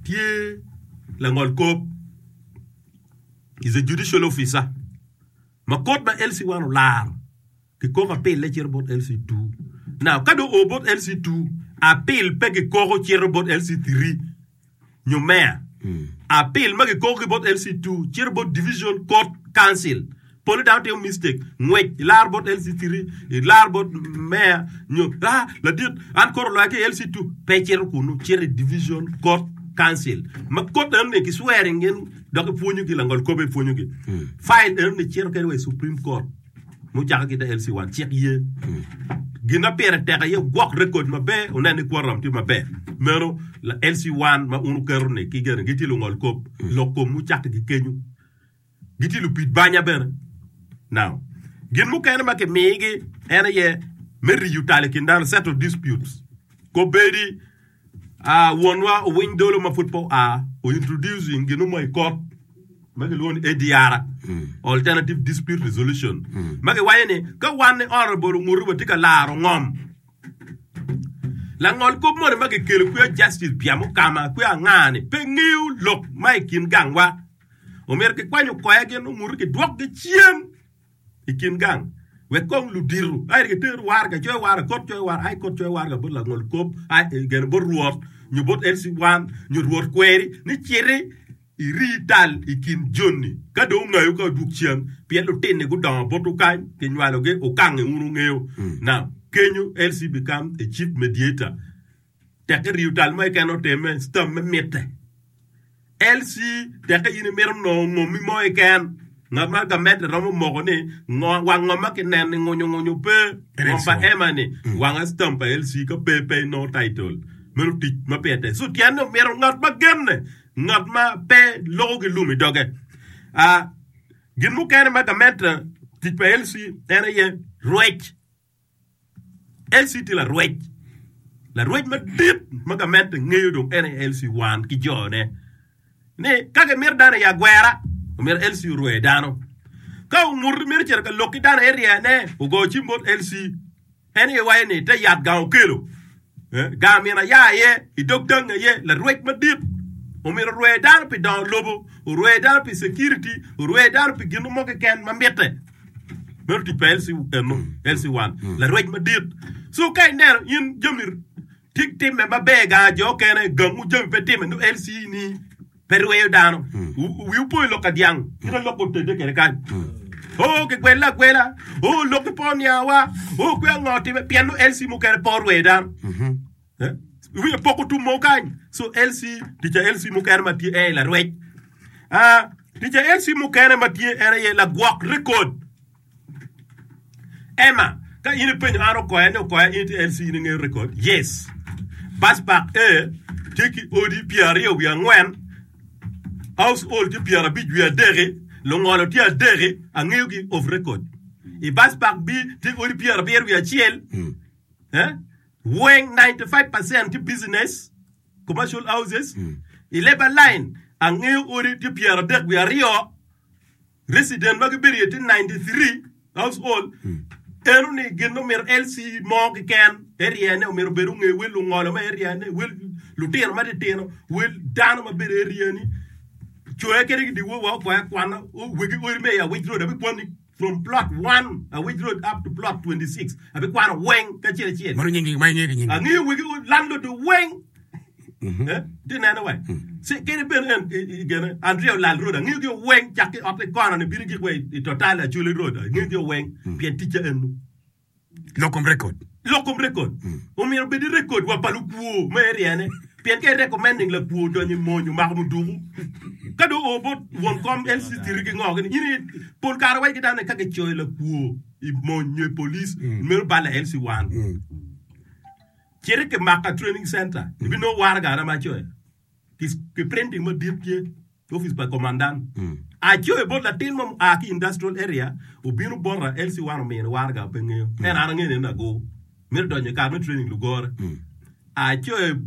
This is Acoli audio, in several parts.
tye langol kop, is a judicial officer, ma kod ma LC one olaro ki koko apille cito bot LC two. Now ka do o bot LC two, apil pe ki koko cito bot LC three nyo mayor. Apil ma ki koko ki bot LC two cito bot division court council. Pol dano timo mistake, ngwec ilar bot LC3, ilar bot mayor nyo ah ladit an koro loya ki LC2 pe cito kunu cito i division court council ma court eno ni ki swearing in dok ipwonyogi langol kobe ipwonyogi file eno ni cito kede wa i Supreme Court mucako ki ta LC1 cik ye gin ma pire tek aye gwok record maber unen ni quorum tye maber meno la LC1 ma un uketo ni ki gene gitye lungol kop lok kom mucakki gi kenyu gitye lupid banya bene. Now, gin mukene ma kimigi en aye me riyo tal i kin dano, settle disputes. Kobedi ah, wonwa Owiny Dolo ma pud pe oa o introducing gin mo i kot ma kilwongo ni ADR, Alternative Dispute Resolution, ma giwaco ni ka wan ni Honorable Ongutu watye ka laro ngom langol kop moni ma kikelo kwiya Justice Bya Mukama kwiya Angani pe ngeyo lok ma i kin gangwa. Omyero kikwany okoya gin omuto kidwokgi cen i kin gang wek kong ludito aye giter warga coyo warga kot coyo warga aye kot coyo warga bot langol kop aye gene bot rwot nyo bot LC1 nyo rwot kweri ni citi iri tal i kin joni ka dong ongayo ka odwog cen pien lutinni gudongo botwu kany kinywalogi ukange wun wungeyo now kenyo LC become a chief mediator Tek ka riyo tal mo keken oteme, stam me mitte. LC, Tek ka in imito nongo ngommi mo keken, ngat ma gamente romo moko ni ngo, wang ngom ma kineno i ngunyo ngunyo pe. Ngom pa Emma ni wanga stam pa LC ka pe pe inongo title. Meno tic ma pire tek. So tyen ni omito ngat ma genne, ngat ma pe loko ki lum i doge. Ah, gin mukene ma gamente tic pa LC en aye rwec LC tye larwec, larwec madit ma gamente ngeyo dong en aye LC wan ki jone. Ni ka gimito dano aye agwera, omyero LC orwe dano. Ka ongut mito cito ka lok ki dano aye ryene, ogo cim bot LC. En aye waco ni te yat gang okelo. Gar myero aya iye, i dog dangi aye larwec madit omyero orwe dano pi dongo lobo, orwe dano pi security, orwe dano pi gin mo keken ma mitte. Meno tic pa LC, eno, LC1. Larwec madit. So ka ineno in jami ti- timme maber ga jo kene, gangu jami pe timme, nongo LC ni pe rweyo dano. Wi upo i lok ka dyang, kite lok otedde kede kany. O kigwelle agwela, o lok ki po niawa, o kwe ango time, pien o LC mukene po rweyo dano. Eh? Iwinyo poko tum mo kany. So LC, tica LC mukene ma tye en larwec. Ah, tica LC mukene ma tye en aye lagwok rekod. Emma, Ka in ipenyo an okoya ni okoya in itye LC in ingeyo record? Yes. Bus park A tye ki odi pyer aryo wiye angwen, house hall tye pyer abic wiye adeki, lungolo tye adeki, angeyo gi off record. I bus park B tye odi pyer abiro wiye acel, eh? weng 95% tye business, commercial houses. I labor line angeyo odi tye pyer adek wiye aryo, resident ma gibedo iye tye 93 years old eno ni gin omito LC mo keken area ne omito bedo nge wel lungolo ma area ne wel lutino ma titino wel dano ma bedo area ni coya kene ki diwo wa okwaya kwana wegi odi me ya wich road abi kwani from plot 1 a wich road up to plot 26 abi kwano weng kacel acel Mano nyingi ma ing'e ki nyingi. ang'iyo wegi landlord weng ti neno wa si kene bene en gene andrea olal road angeyo gi weng cak ki ot kono ni bini gik wa i total achuli road angeyo gi weng pien ticca enu lokom record lokom record omyero bedi record wa pa lukwo ma eriane pien ke recommending lakwo donyo i mony omako muduku ka do obo won kom LC tiri ki ngo gini ini pol kare wa ki dano ka gicoyo lakwo i mony nyo i polis meno bala LC wan Citi ki Maka Training Center, ibinongo waraga ara ma coyo ki printing madit tye i opic pa Komandan. Acoyo bot latin mo mua ki Industrial Area obino bota, LC wan omini waraga pe ngeyo, ento an angeyo ni en lago mito donyo i kare me training lugore. Acoyo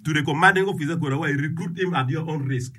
to the Commanding Officer kwena wa i recruit him at your own risk.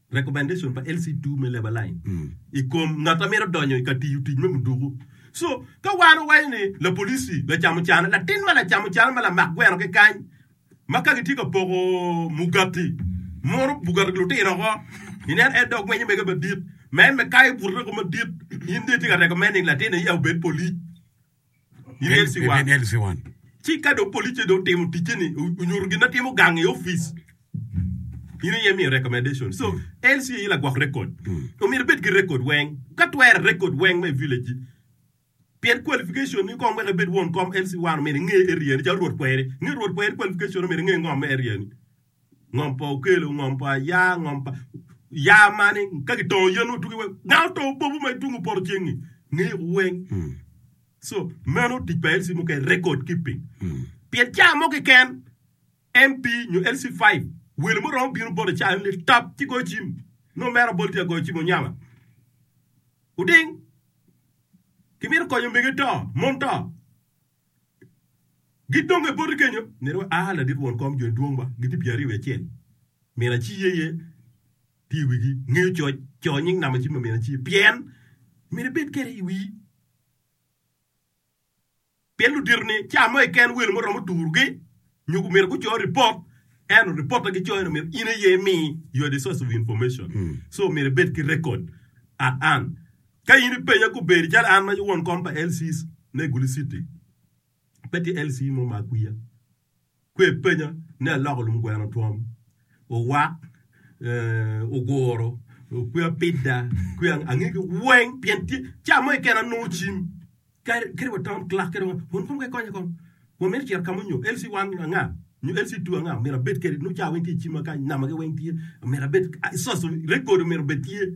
recommendation pa LC2 me labor line i kom ngat ma mito donyo i ka tiyo tic me muduku. So, ka wan owaco ni lapolici, lacamucana, latin ma lacamucana ma lamak gweno ki kany ma ka gitye ka poko mugati, muro mugati lutino oko, inen en dong gwenyo mege madit, ma en me kayo bute doko madit, in dong itye ka recommending latin aye obed police. Lyelsi wa. Lyelsi wa. Ci ka dong police dong otimo ticce ni onyuto gin ma timo gang i office, in iye imiyo recommendation. So mm. LC aye lagwok record. Mm. Omyero ibed ki record weng. Ka twere record weng me village. Pien qualification ni kong wek ibed won kom LC1 omyero inge area ni ca rwot kweri. Nge rwot kweri qualification omyero inge ngom me area ni. Ngom pa okelo, ngom pa aya, ngom pa ya mani ka kitongo yen otuki wek ngat otongo popu ma itungu poto ceng-ngi ngeyo ku weng. So meno tic pa LC muke record keeping. Pien ca mo keken MP nyo LC five welo mo romo bino bote ca en lel tap ci goyo cim no mere abol tye agoyo cim onyama. Uding kimito konyo mege to, mon to. Gidonge boti kenyo, neri wa aa ladit won kom jo dwongwa gitye pyeraryo wiye acel, min aci ye ye tye i wigi, ngeyo coc, coo nying namo cim ma min aci, pien myero ibed kede i wii, pien ludito ni ca mo keken welo mo romo turu gi nyo gu myero gu coo report, eno report ma gi coo eno myero in aye imi, you are the source of information, so myero ibed ki record at an. Ka in ipenya kubedi calo an ma won kom pa LCs me Gulu City, pe tye LC mo ma akwiya. Kwe ipenya ni aloko lum gweno twom, owak, eh, oguro, kwe apida, kwe ang angegi weng pien tye ca mo keken anongo cim. Kadi kadi wa Tom Clark kadi wa Hon Kong Kekony kong wa mito cito kamo nyo LC one anga nyo LC two anga myero abed kedi nongo ca weng tye icima kany nama gi weng tye myero abed source of record of myero bed tye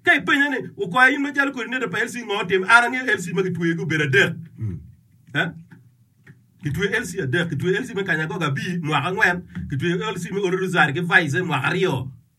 ka ipenya ni okwaya in macalo kodi neda pa LC ngo otim an angeyo LC ma gitweye gi obedo adek gitweye LC adek gitweye LC me kanya gogo abir mwaka angwen gitweye LC me Olo Rosary ki Vice mwaka aryo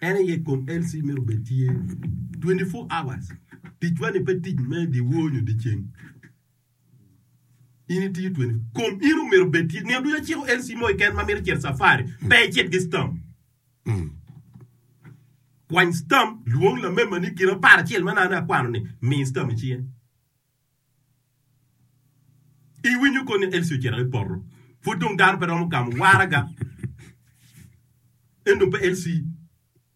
En aye kom LC myero obed tye 24 hours. Ticwa ni pe tic me dyewor nyo dyeceng. In itiyo 20 kom in omyero obed tye nino ducu aciko LC mo keken ma mito cito safari pe icit ki stam. Mm. Kwany stam, lwong lamemani kite apar acel ma nane akwano ni mi stam icinge. Iwinyo koni ni Elsie ocito ki poto? Pud dong dano pe romo gamo waraga. Ento pe Elsie.